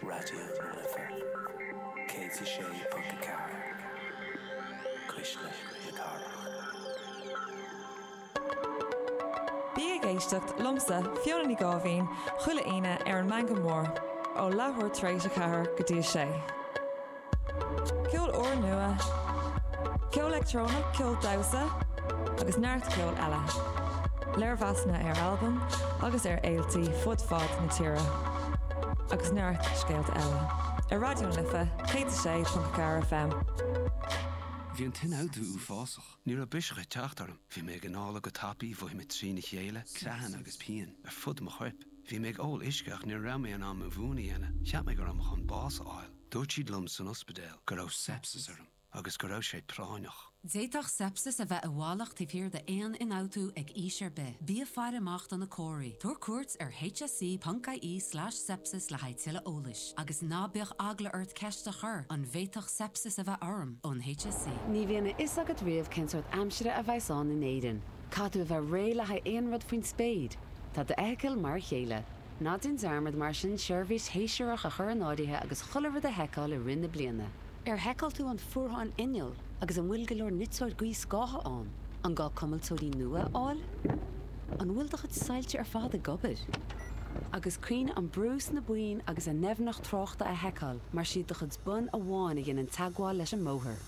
Raidió na Life 106.4, Cuisle na Cathrach. Bí ag éisteacht liomsa, Fiona Ní Gháibhín, chuile Aoine ar an Meangadh Mór, ó leathuair tar éis a ceathair go dtí a sé. Ceol úrnua, ceol leictreonach, ceol damhsa agus neart ceol eile. Léirmheasanna ar albaim agus ar fhéilte fud fad na tíre. Agus neart scéalta eile. Ar Raidió na Life 106.4 FM. Bhí an t-ionfhabhtú uafásach. Ní raibh biseach ag teacht orm. Bhí mé ag análú go tapaidh, mhothaigh mé trína chéile, creathanna agus pian ar fud mo choirp. Bhí mé ag ól uisce ach ní raibh mé in ann mo mhún a dhéanamh. Cheap mé go raibh mé chun bás a fháil. Dúirt siad liom san ospidéal go raibh sepsis orm agus go raibh sé práinneach. D'fhéadfadh sepsis a bheith i bhfalach taobh thiar d'aon ionfhabhtú ag aois ar bith. Bí ag faire amach do na comharthaí. Tabhair cuairt ar hse.ie slash sepsis le haghaidh tuilleadh eolais. Agus ná bíodh eagla ort ceist a chur, An bhféadfadh sepsis a bheith orm? ón hse. Ní bhíonn a fhios agat riamh cén sórt aimsire a bheas ann in Éirinn. Caithfidh tú a bheith réidh le haghaidh aon rud faoin spéir. Tá d'fheithicil mar a chéile. Ná déan dearmad mar sin seirbhís shéasúrach a chur in áirithe agus chuile rud a sheiceáil i rith na bliana. Ar sheiceáil tú an fuarthán innill agus an bhfuil go leor niteora gaothscátha ann? An gá cuimilteoirí nua a fháil? An bhfuil do chuid soilse ar fad ag obair? Agus cuimhnigh an brú sna boinn agus a ndoimhneacht tráchta a sheiceáil mar is iad do chuid bonn amháin a dhéanann teagmháil leis an mbóthar.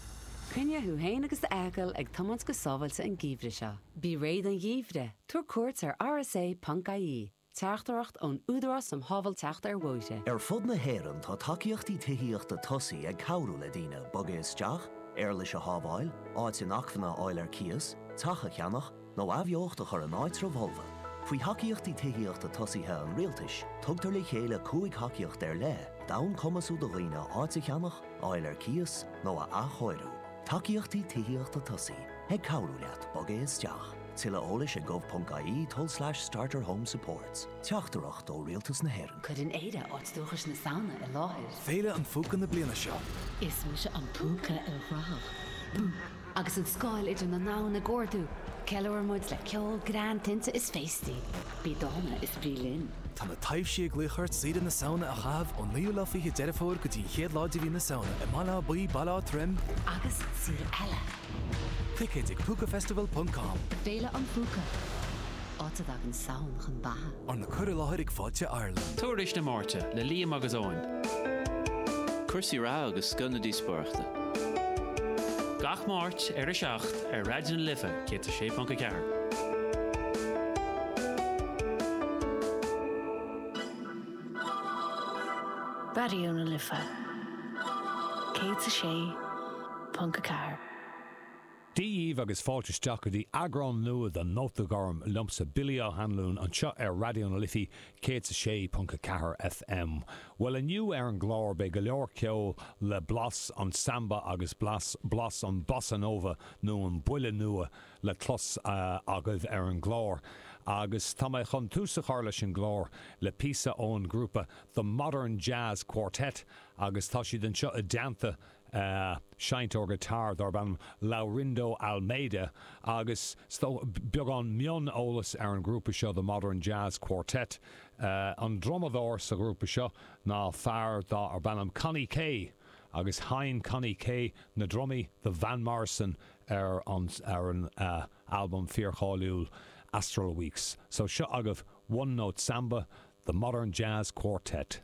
Coinnigh tú féin agus d'fheithicil ag tiomáint go sábháilte an geimhreadh seo. Bí réidh don gheimhreadh, tabhair cuairt ar rsa. ie. Teachtaireacht ón Údarás um Shábháilteacht ar Bhóithre. Ar fud na hÉireann tá tacaíochtaí tithíochta tosaigh ag cabhrú le daoine bogadh isteach, éarlais a shábháil, áit inacmhainne a fháil ar cíos, teach a cheannach, nó athbheocht a chur in áitribh fholmha. Faoi thacaíochtaí tithíochta tosaigh an Rialtais, tugtar le chéile cúig thacaíocht ar leith d'fhonn cumasú do dhaoine áit a cheannach, a fháil ar cíos, nó a athchóiriú. Tacaíochtaí Tithíochta Tosaigh ag cabhrú leat bogadh isteach. Tuilleadh eolais ag gov.ie tulslais starterhomesupports. Teachtaireacht ó Rialtas na hÉireann. Cuireann Éire áit dúchais na Samhna i láthair. Féile an Phúca na bliana seo. Is mise an Púca ilchruthach. Bú! Agus an scáil idir na domhain ag ardú, ceiliúraimid le ceol, greann, tinte is féastaí. Bí dána is bí linn. Tá na taibhsí ag glaoch ort oidhreacht na Samhna a chaitheamh ón 9ú lá 20 Deireadh Fómhair go dtí an 1ú lá de mhí na Samhna i mBaile Átha Buí, Baile Átha Troim, agus saol eile! Ticéid ag Púcafestival.com. Féile an Phúca, áit a dtagann Samhain chun beatha. Arna cur i láthair ag Fáilte Ireland. Tuairisc na Máirte le Liam agus Eoin. Cúrsaí reatha agus scoth na díospóireachta. Gach Máirt ar a 7 ar Raidió na Life. 106.4. Raidió na Life 106.4. Dia dhíbh agus fáilte isteach go dtí eagrán nua de Nóta Gorm liomsa, Billy Ó hAnluain, anseo ar Raidió na Life 106.4 FM. Bhuel inniu ar an gclár beidh go leor ceol le blas an samba agus blas an bossa nova nó an buille nua le clos agaibh ar an gclár agus tá mé chun tús a chur leis an gclár le píosa ón ghrúpa The Modern Jazz Quartet agus tá siad anseo i dteannta seinnteoir guitar darb ainm Laurindo Almeida agus beagán mioneolas ar an ghrúpa seo The Modern Jazz Quartet An drumadóir sa ghrúpa seo ná fear darb ainm Connie Kay. agus sheinn Connie Kay na drumaí do Van Morrison ar an albam fíorcháiliúil Astral Weeks. So seo agaibh One Note Samba, The Modern Jazz Quartet.